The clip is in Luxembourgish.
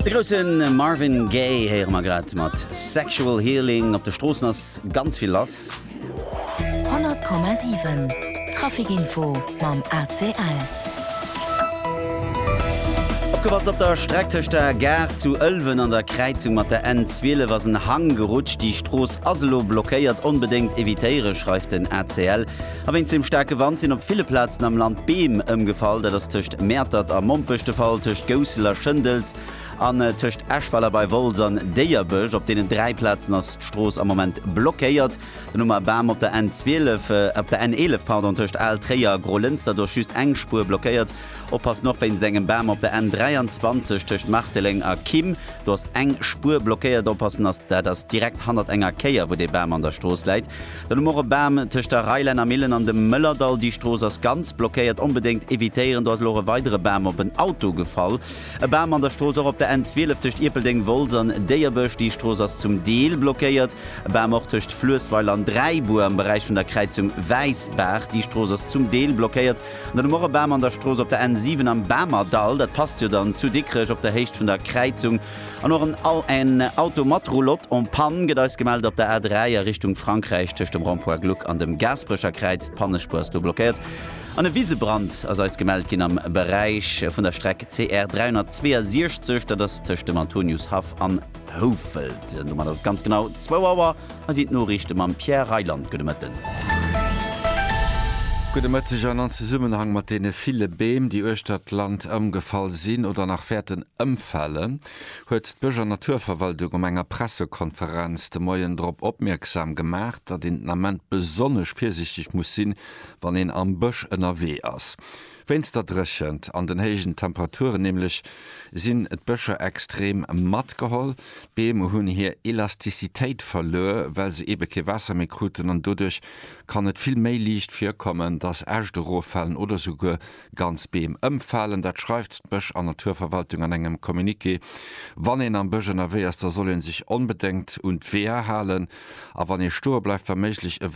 De groussen Marvin Gaye héiere mer grad mat Sexual Healing. Op de Stroossen ass ganz vill lass. 100,7 Traficinfo mam ACL. Opgepasst, Op der Streck tëscht der Gare zu Ëlwen an der Kräizung mat der N 12 ass en Hang gerutscht. Déi Strooss ass elo blockéiert. Onbedéngt evitéiere schreift den ACL. A wéinst dem staarke Wand sinn op ville Plazen am Land Beem ëmgefall. Dat ass tëscht Mäertert a Mompech de Fall, tëscht Goussel a Schëndels an tëscht Eschweiler bei Wolz an Déierbech. Op deenen dräi Plazen ass d'Strooss am Moment blockéiert. Den Umaer Bam op der N12, op der N11, pardon, tëscht Al, Tréier a Grolënster, do ass just eng Spuer blockéiert. Oppassen och wéinst engem Bam op der N23 tëscht Marteleng a Kim. Do ass eng Spuer blockéiert. Oppassen ass, dat ass direkt hannert enger Kéier, wou dee Bam an der Strooss läit. Dann hu mer och e Bam tëscht der Reilännermillen an dem Mëllerdall. Déi Strooss ass ganz blockéiert, onbedéngt evitéieren. Do ass elo och e weidere Bam op en Auto gefall. E Bam an der Strooss och op der N 12 tëscht Ierpeldeng, Wolz an Déierbësch. Déi Strooss ass zum Deel blockéiert. E Bam och tëscht Fluessweiler an Dräibur am Beräich vun der Kräizung Wäissbaach. Déi Strooss ass zum Deel blockéiert. An dann hu mer och e Bam an der Strooss op der N 7 am Bamerdall. Dat passt jo dann zu Dikrech op der Héicht vun der Kräizung. An och en AN Auto mat Roulotte en panne gëtt eis gemellt op der A3 a Richtung Frankräich. Tëscht dem Rond-Point Gluck an dem Gaasperecher Kräiz, d'Pannespuer ass do blockéiert. An e Wisebrand ass eis gemellt ginn am Beräich vun der Streck CR 362, dat ass tëscht dem Antoniushaff an Houfelt. Domat ass et ganz genau zwou Auer a sinn d'Noriichte mam Pierre Reyland. Gudde Mëtten. Gudde Mëtteg. An an Zesummenhang mat deene ville Beem, déi uechter d'Land ëmgefall sinn oder nach wäerten, ëmfalen, huet d'Bësch an Naturverwaltung op enger Pressekonferenz de Moien drop opmierksam gemaach, datt een den Ament besonnesch virsichteg muss sinn, wann een am Bësch ënnerwee ass. Wéinst der Dréchent an den héijen Temperaturen nämlech sinn d'Bëscher extrem matgeholl. D'Beem hunn hir Elastizitéit verluer, well se eebe kee Waasser méi kruten an doduerch kann et vill méi liicht virkommen, datt Äscht eroffalen oder souguer Ganz Beem ëmfalen, dat schreift d'Bësch an Naturverwaltung an engem Communiqué. Wann een am Bësch ënnerwee ass, da soll ee sech onbedéngt un d'Weeër halen a wann ee stoe bleift, wa méiglech e